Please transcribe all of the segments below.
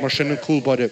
Mar sin, an cúl báire.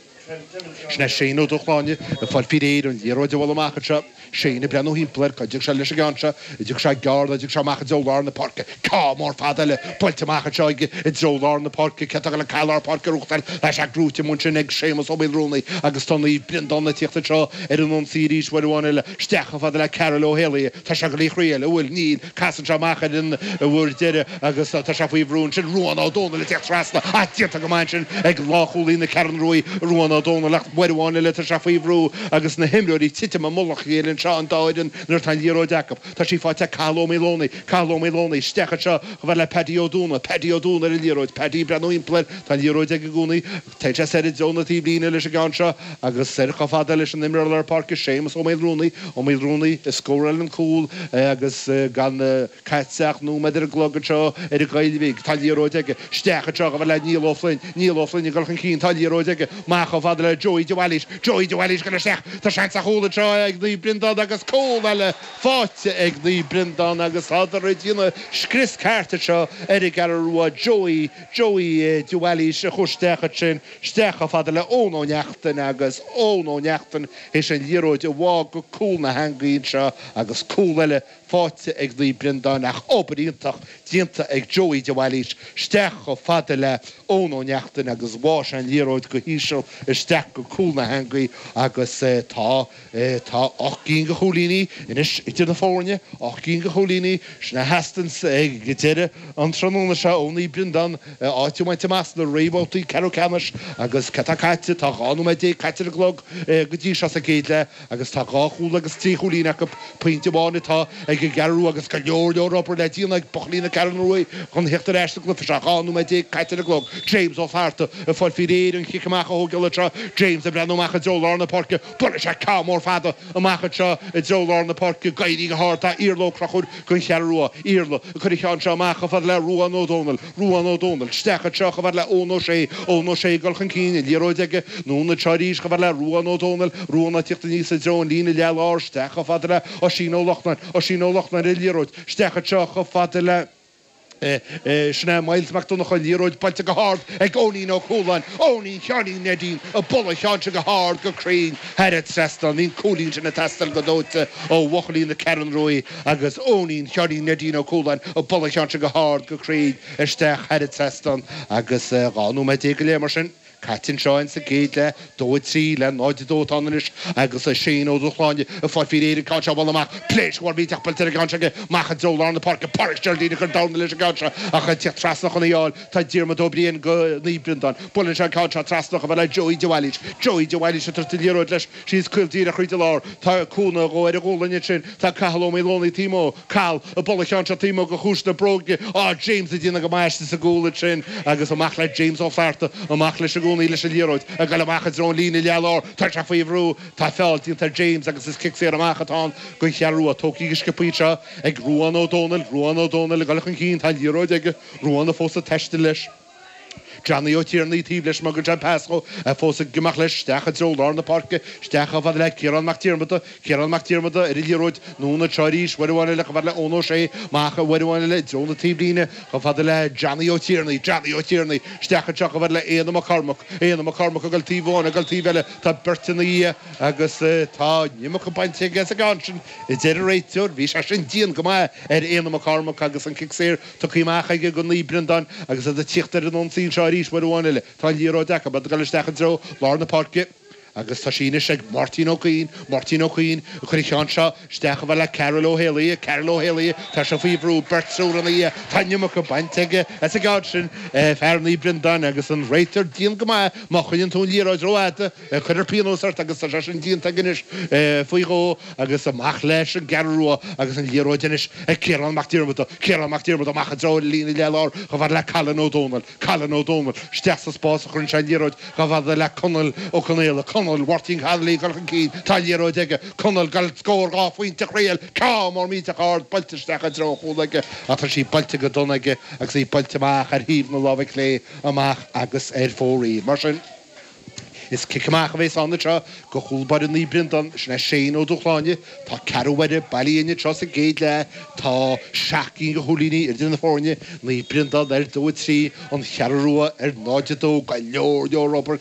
Sin é Shane Ó Dúshláine ag fáil faoi réir an liathróid a bhualadh amach anseo. Shane ag breathnú thimpeall air, cá dtiocfaidh sé leis an gceann seo? An dtiocfaidh sé gearr nó an dtiocfaidh sé amach i dtreo lár na páirce? Ceann mór fada eile buailte amach anseo aige i dtreo lár na páirce? Cé atá ag dul an cath lár páirce a ghnóthachtáil? Tá sé gnóthaithe amuigh ansin ag Séamus Ó Maolrúnaí agus tá Naomh Breandán ag tíocht anseo ar an ionsaí arís uair amháin eile. Isteach chomh fada le Karl Ó hÉalaithe. Tá sé ag glaoch réidh eile. Bhuail Neil. Casann sé amach ar an bhur deireadh agus tá sé faoi bhrú ansin. Ruán Ó Dónaill ag teacht trasna. Ach déanta go maith ansin ag lánchúlaí na Ceathrún Ruaidh Ruán Ó Dónaill ach uair amháin eile tá sé faoi bhrú agus na himreoirí ag titim i mullach a chéile anseo an dá fhoireann nuair atá an liathróid acu. Tá sí faighte ag Cathal Ó Maoldomhnaigh. Cathal Ó Maoldomhnaigh. Isteach anseo chomh fada le Peaidí Ó Dúna. Peaidí Ó Dúna ar an liathróid. Peaidí ag breathnú timpeall air. Tá an liathróid aige i gcónaí. Téann sé soir i dtreo na taobhlíne leis an gceann seo agus soir chomh fada leis an imreoir lár páirce Séamus Ó Maolrúnaí, Ó Maolrúnaí a scóráil an cúl agus gan caite ach nóiméad ar an gclog anseo ar an Ghaillmhigh. Tá liathróid aige isteach anseo chomh fada le Niall Ó Floinn, Niall Ó Floinn ag dul chun cinn, tá liathróid aige amach chomh fada le Joey de Bhailís, Joey de Bhailís ag dul isteach, tá seans ar chúl anseo ag Naomh Breandán agus cúl eile faighte ag Naomh Breandán agus tádar ag déanamh scrios ceart anseo ar an gCeathrú Rua, Joey Joey de Bhailís a chuir isteach ansin, isteach chomh fada le Eoin Ó Neachtain agus Eoin Ó Neachtain théis an liathróid a bhá go cúl na heangaí anseo agus cúl eile faighte ag Naomh Breandán ach obair iontach déanta ag Joey de Bhailís, isteach chomh fada le Eoin Ó Neachtain agus bhá sé an liathróid go híseal isteach go cúl na heangaí agus tá. Tá ocht gcinn de chúilíní anois idir na foirne, ocht gcinn de chúilíní, is má sheasann sé go deireadh an tráthnóna seo. Naomh Breandán áit a bhaint amach sna réamhbhabhtaí ceathrú ceannais agus cad atá caite? Tá dhá nóiméad déag caite ar an gclog go dtí seo sa gcéad leath agus tá dhá chúl agus trí chúilín acu. Pointe amháin atá ag an gCeathrú Rua agus go leor leor obair le déanamh ag buachaillí na Ceathrún Ruaidh chun theacht ar ais sa gcluiche seo. Dhá nóiméad déag caite ar an gclog. James Ó Flatharta, ag fáil faoi réir an cic amach a thógáil anseo. James ag breathnú amach i dtreo lár na páirce. Buailfidh sé ceann mór fada amach anseo i dtreo lár na páirce. Ag éirí go hard tá Iarla Ó Conchúir don Cheathrú Rua. Iarla, Ag cur an cheann seo amach chomh fada le Ruán Ó Dónaill. Ruán Ó Dónaill, isteach anseo chomh fada le Eoin Ó Sé. Eoin Ó Sé, Ag dul chun cinn, an liathróid aige, anonn anseo arís chomh fada le Ruán Ó Dónaill. Ruán, Ag teacht aníos i dtreo an líne leath lár, isteach chomh fada le Oisín Ó Lochnáin. Oisín Ó Lochnáin, An liathróid, isteach anseo chomh fada le. Sin é Myles Mac Donnchadha, liathróid buailte go hard ag Eoinín Ó Cualáin, Eoinín Sheáinín Neidín, ag bualadh an cheann sin go hard go cruinn thar an trasnán, an cúilín sin ag teastáil go dóite ó bhuachaillí na Ceathrún Ruaidh agus Eoinín Sheáinín Neidín Ó Cualáin ag bualadh an cheann sin go hard go cruinn isteach thar an trasnán agus dhá nóiméad déag go leith mar sin. Caite anseo sa gcéad leath, dó a trí le náid a dó atá ann anois agus é Shane Ó Dúshláine ag fáil faoi réir an ceann seo a bhualadh amach. Pléasc mhór mhillteach buailte ar an gceann seo aige amach i dtreo lár na páirce. Páraic Sherldine ag cur dorna leis an gceann seo ach ag tíocht trasna chun í a fháil tá Diarmuid Ó Briain do Naomh Breandán. Buaileann sé an ceann seo trasna chomh fada le Joey De Bhailís. Joey De Bhailís ag tabhairt an liathróid leis Síos caol díreach thríd an lár tá cúnamh dhó ar a ghualainn ansin tá Cathal Ó Maoldomhnaigh taobh amuigh, Cathal ag bualadh an cheann seo taobh amuigh de chluais na bróige tá James ag déanamh go maith istigh sa gcúl ansin agus amach le James Ó Flatharta amach leis i gcónaí leis an liathróid ag goil amach i dtreo an líne leath lár tá sé faoi bhrú tá feall déanta ar James agus is cic saor amach atá ann don Cheathrú Rua tógtha go sciobtha anseo ag Ruán Ó Domhnaill Ruán Ó Domhnaill ag goil chun cinn tá an liathróid aige Ruán fós ag taisteal leis. Johnny Ó Tiarnaigh taobh leis má thugtar an pas dhó í fós aige amach leis isteach i dtreo lár na páirce, isteach chomh fada le Ciarán Mac Diarmada, Ciarán Mac Diarmada ar an liathróid, anonn anseo arís, uair amháin eile chomh fada le Eoin Ó Sé, amach uair amháin eile i dtreo na taobhlíne chomh fada le Johnny Ó Tiarnaigh, Johnny Ó Tiarnaigh, isteach anseo chomh fada le Éanna Mac Cormaic, Éanna Mac Cormaic ag dul taobh amháin, ag dul taobh eile, tá beirt ina dhiaidh agus tá an iomarca bainte aige as an gceann sin, a deir an réiteoir, bhí sé sin dian go maith ar Éanna Mac Cormaic agus an cic saor. Tugtha amach aige do Naomh Breandán agus iad ag tíocht ar an ionsaí anseo arís uair amháin eile. Tá an liathróid acu, ag dul isteach i dtreo lár na páirce agus tá sí anois ag Máirtín Ó Cuinn. Máirtín Ó Cuinn ag cur an cheann seo isteach chomh fada le Karl Ó hÉalaí. Karl Ó hÉalaí tá sé faoi bhrú, beirt triúr ina dhiaidh. Tá an iomarca bainte aige as an gceann sin, fear Naomh Breandán, agus an réiteoir dian go maith má choinníonn tú an liathróid rófhada. Cuirfear pionós ort agus tá sé sin déanta aige anois. Faoi dhó agus amach leis an gCeathrú Rua agus an liathróid anois ag Ciarán Mac Diarmada. Ciarán Mac Diarmada amach i dtreo an líne leath lár chomh fada le Cailin Ó Domhnaill. Cailin Ó Domhnaill isteach sa spás a chuireann sé an liathróid chomh fada le Conall Ó Conaola. Conall, Mháirtín Connolly ag dul chun cinn. Tá an liathróid aige. Conall, ag goil scór dhá phointe a thriail. Ceann mór millteach ard buailte isteach i dtreo an chúil aige ach tá sí buailte go dona aige agus í buailte amach ar thaobh na láimhe clé amach agus ar fóraoil. Mar sin. Is cic amach a bhéas ann anseo do chúl báire Naomh Breandán. Sin é Shane Ó Dúshláine. Tá ceathrú uaire bailithe uainn anseo sa gcéad leath. Tá seacht gcinn de chúilíní idir na foirne. Naomh Breandán ar dó a trí, An Cheathrú Rua ar náid a dó. Go leor leor obair